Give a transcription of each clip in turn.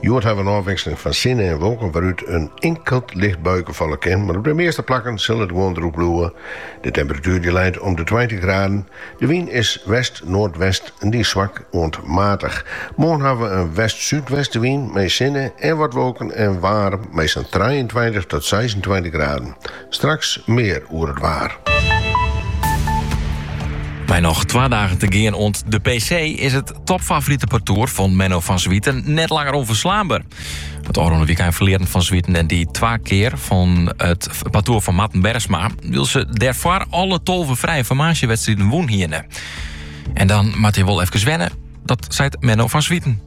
Hjoed ha we in ôfwikseling fan sinne en wolken wêrút in inkeld licht buike falle kin, mar op de measte plakken sil it gewoan droech bliuwe. De temperatuer dy't leit om de tweintich graden. De wyn is west-noardwest en dy is swak oant matich. Moarn ha we in west-súdwestewyn mei sinne en wat wolken en waarm mei sa'n trijeentweintich tot seisentweintich graden. Straks mear oer it waar. Mei noch twa dagen te gean oant de PC is it topfavorite partoer fan Menno van Zwieten net langer ûnferslaanber. It ôfrûne wykein ferlearen Van Zwieten en dy twa kear fan it partoer fan Marten Bergsma, wylst se dêrfoar alle tolve frije formaasjewedstriden wûn hiene. En dan moatte je wol efkes wennen, dat seit Menno van Zwieten.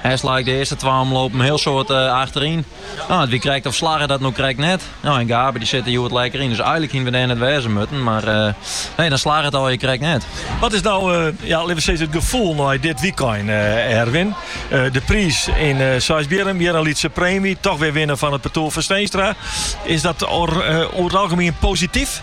Hest lei ik de earste twa omlopen heel soad eh, achteryn. Nou, it wie krekt of slagge dat no krekt net. Nou, en Gabe dy sit der hjoed lekker yn, dus eigenlik hienen we dêr net wêze moatten, mar eh, nee, dan slagge it alweer krekt net. Wat is nou, eh, ja, litte we sizze, it gefoel nei dit wykein, eh, Erwin? Eh, de priis yn uh, eh, Seisbierrum, hjir in lytse preemje, toch wer winne fan it partoer fan Steenstra. Is dat oer it algemien posityf?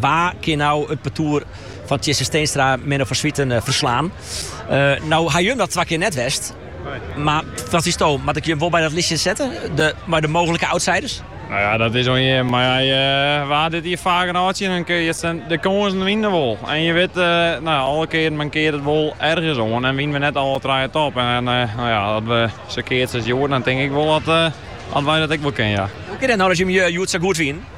Wa kin no it partoer fan Tjisse Steenstra Menno van Zwieten ferslaan? No ha jim dat twa kear net west, mar wat fynsto, moat ik jim wol by dat listjen sette mei de mooglike outsiders? No ja, dat is oan jim, mar ja, je waard dit jier faak in âld tsjin en de kânsen wiene wol. En je wit, alle kearen mankearre it wol ergens oan en wienen we net alle trije top. En no ja, as we sa keatse as hjoed, dan tink ik wol dat wy dat ek wol kinne, ja. Hoe kin it no dat jim hjoed sa goed wienen?